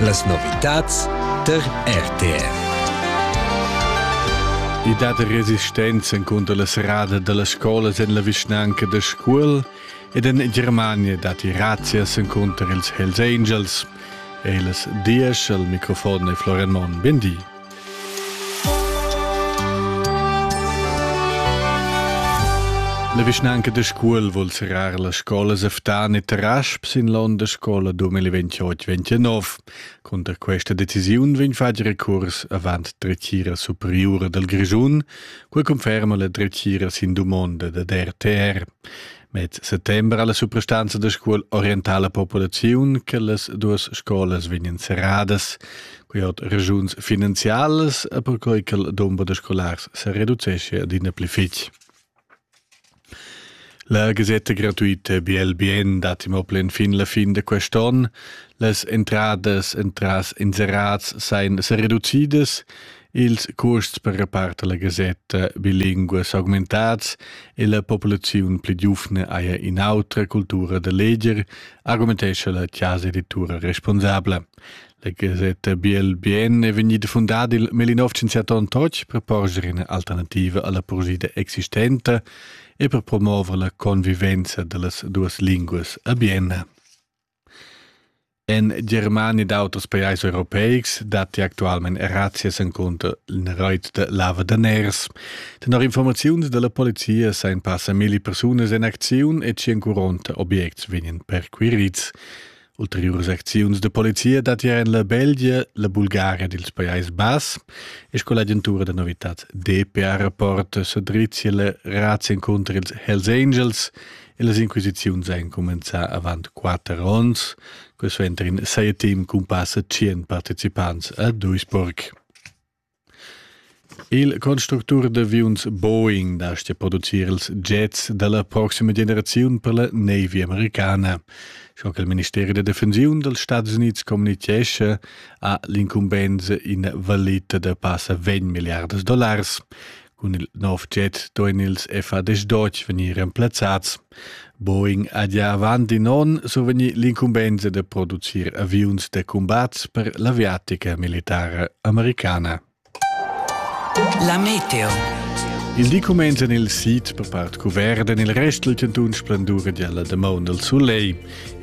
Las novitads tar RTR. I dat resistenza encunter la serrada dallas scolas en la vischnanca da Scuol ed en Germania datti razzias encunter ils Hells Angels. E las diesch al microfon è Florian Monn. Bindi. La vischnanca da Scuol vul serrar las scolas a Ftan e Tarasp sin l'onn da scola 2028-29. Cunter questa decisiun vegn fatg recurs avant dretgira superiura dal Grischun, quai conferma la dretgira sin dumonda dad RTR. Met settember alla suprastanza da scuol orientala populaziun che las duas scolas vegnan serradas, quei hat regiuns finanzialas e perquei che il dumber da scolars se reducesce adina pli fitg. La gasetta gratuita BLBN dat im plen fin la fin de quest'on. Las entradas entras inserats sein se reducidas Ils cuosts per reparter la gasetta bilinguas augmentats e la populaziun pli giuvna haja in'autra cultura da leger, argumentescha la chasa-editura responsabla. La gasetta Biel Bien è vegnida fundada il 1968 per porgere ina alternativa alla poesia existenta e per promuovere la convivenza dellas duas linguas a Bienna. En Germania ed auters pajais europeics datti actualmain razzias encunter in rait da lavadaners. Tenor informaziuns da la polizia sajan passa milli persunas en acziun e 140 objects vegnan perquirids. Ulteriuras acziuns da polizia dattian en la Belgia, la Bulgaria ed ils Pajais Bass e sco l'agentura da novitads DPA Rapport sa drizzia la razzia encunter ils Hells Angels E las inquisiziuns ein cumenzà avant quater onns. Quest'entar in sei team cun passa tschien participants a Duisburg. Il constructur d'aviuns Boeing dastga producir ils jets dalla proxima generaziun per la Navy americana. Schon che il Ministero da Defensiun dals Stati Uniti communichesce ha l'incumbensa in valita da passa 20 miliardas dollars. Cun il nov jet duein ils F-15 vegnir remplazzats. Boeing ha gia avant in onn survegnì l'incumbensa da producir aviuns da cumbat per l'aviatica militara americana. La meteo. Il di cumenza nel sid per part cuvert en il rest del cantun splendura dalla damaun del soleil.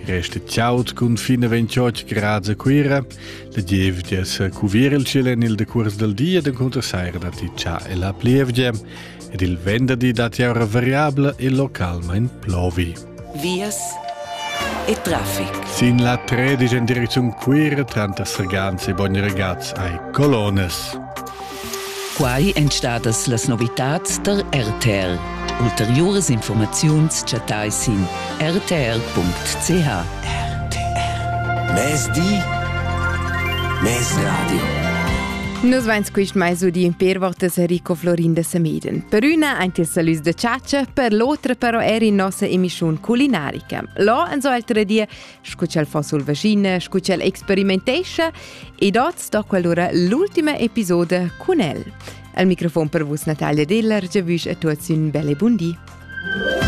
Resta chaud cun fine 28 gradi a Cuira La gievgia sa cuvir il ciel en il decuors dal di ed encunter saira datti cha e la plievgia ed il venderdi datti aura variabla e localmain plovi. Vias e traffic. Sin la 13 en direcziun Cuira tranter Sergans e Bogni Ragaz ai colones. Quai èn stadas las novitads tar RTR. Ulteriuras informaziuns chattai sin rtr.ch. Mezdi, Mezradio. Nus vains quist mais udì per votas Enrico Florin de Semeden. Per üna aint il salüs de ciacia, per l'otra però er in nossa emischiun culinarica. Là, en so altre die, scu ch'el fa sul vaschina, scu ch'el experimentescha ed oz sto quell'ura l'ultima episoda cun el. Al microfon per vus Natalia Diller, giavüsch a tuots ün bel e bun di.